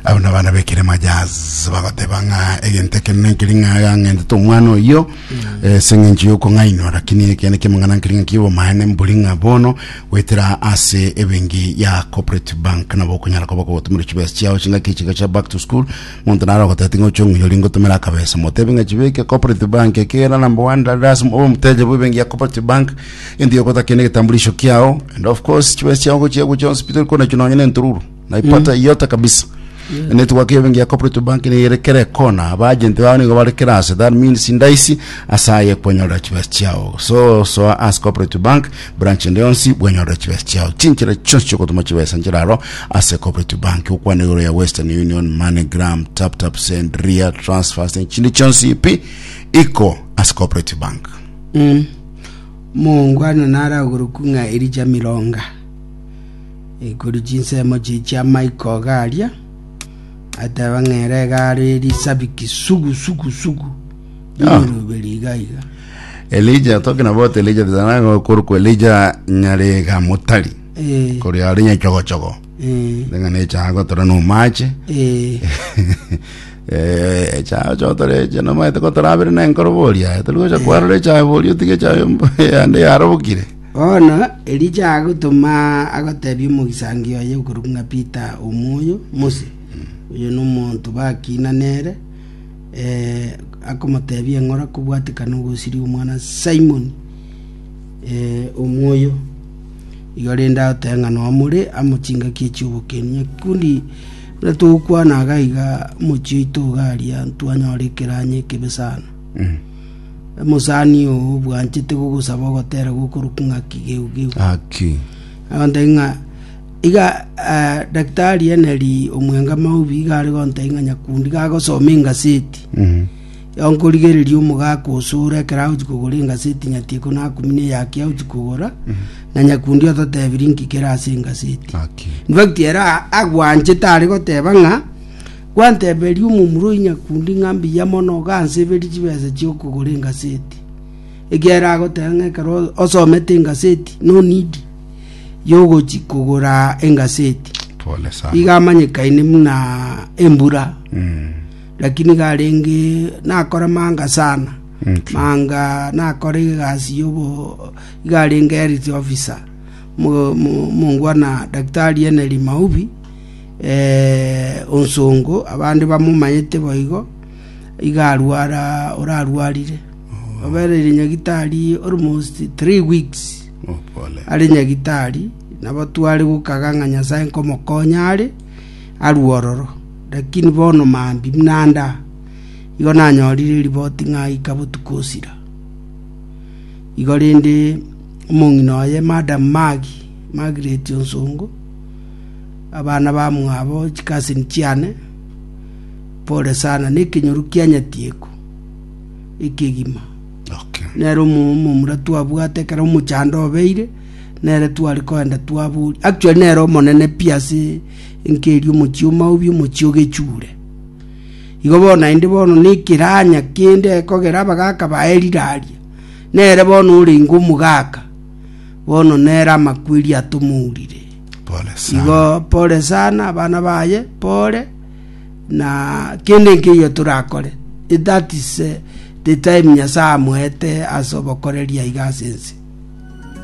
abo nabana bekirema jazz bagoteba ng'a egento ekero nenkeri ng'a gang'entete omwana oyo eh, seng'encho yokong'ainwa lakini ekende kemang'ana nkeri ng'a kibomaene mbori ng'a bono goetera ase ebengi ya corporate bank nabo okonyara koba kogotumera chibesa chiao chingaki chiga chia back to school monto naro ogotete ng'a oche ong'uyori ngotomera akabesa motebe ng'a chibeke corporate bank ekera number one dada ase omoteja bwa ebengi ya corporate bank Enti ogotakia ne egetambulisho kiao and of course chibesa chiao gochia gocha hospital kona chio nonye ne entururu naipata yote kabisa network yao bengi ya cooperative bank ne ere kere kona aba agent bao nigo bare kere ase that means ndaisi ase aye kwanyorera chibesa chiao so soa as cooperative bank branch ende yonsi bwanyorera chibesa chiao chinchera chionsi chiogotuma chibesa nchiraro ase cooperative bank okwana igoro ya western union moneygram tap tap send ria transfers ne chinde chionsi pi iko ase cooperative bank Mongwana naro agorokwu ng'a Elija Mironga, ekoria chinsemo chiria chi'amaiko iga aria, ateba ng'a ere iga are risabiki sugu sugu sugu ri'emeroberi iga iga. Elija toke na bote Elija bizana korokwa Elija nyarega motari Eh, kore are nyachogochogo Eh, Ndeng'ana echago tora nomaache. eh, Eh, echago chotore eche nomaete kotorabere na enkoro boria. Aye tori gocha kwarora echago boria otige echago mb- yande yarobokire. bono elija agotoma agotebia omogisangio oye okorwa ng'a peter omwoyo mose oyo nomonto bakina nere eh, akomotebia eng'ora kobwatekana ogosiria omwana simon eh, omwoyo Igo rende agoteba ng'a noa more amo chingaki echi obokeni. Ekekundi buna togokwana iga iga mochie oito iga aria ntwanyora ekeranya ekebe sana. Omosani oo obwanchete gogosaba ogotera gokoruku ng'a kigeu geu. Aki. Agoteba ng'a iga eh, daktari Henry omwenga Maubi iga are goteba ng'a nyakundi iga agosoma engaseti. Onkorigereria omogaka osore ekero agochia kogora engasi etinyati ikono akumi na eyake agochia kogora, na nyakundi ototebirie nki kere ase engaseti. Haki. In fact, ere a- agwanchete are goteba ng'a gwanteberia omomura oyi nyakundi ng'a mbuya mono ganseberie chibesa chi'okogora engaseti. Ekiagera agoteba ng'a ekero osomete engaseti, no need yogochia kogora engaseti. Pole sana. Iga amanyekaine buna embura. Mm. Naki nigo arenge nakore manga sana, manga nakore egasi yobo, iga arenge health officer mo- mo- mongwa na Daktari Henry Maubi eh, Onsongo, abande bamomanyete boigo, iga arwara orarwarire obereire nyagitari almost three weeks Oh, pole. are nyagitari nabo tware gokaga ng'a nyasae nkomokonya are arue ororo, lakini bono maambia buna ande aa, igo nanyorire riboti ng'a aika botuko osira. Igo rende omong'ina oye, Madam Maggy, Margaret Onsongo, abana bamwabo, chicousin chiane, pole sana na ekenyoru kia nyatieko ekegima. Okay. nere omo- omomura twabwate ekero omochando obeire nere tware koenda twabori actually nere omonene pi ase enkeria omochie o Maobi, omochie o Gechure. Igo bono naende bono nekeranya kende ekogera abagaaka baye riraria, nere bono orenge omogaaka, bono nere amakweri atomourire. Pole sana. Igo pole sana abana baye, pole na kende nkeiyo torakore. That is eh, the time Nyasaye amoete ase obokoreri aiga ase ense.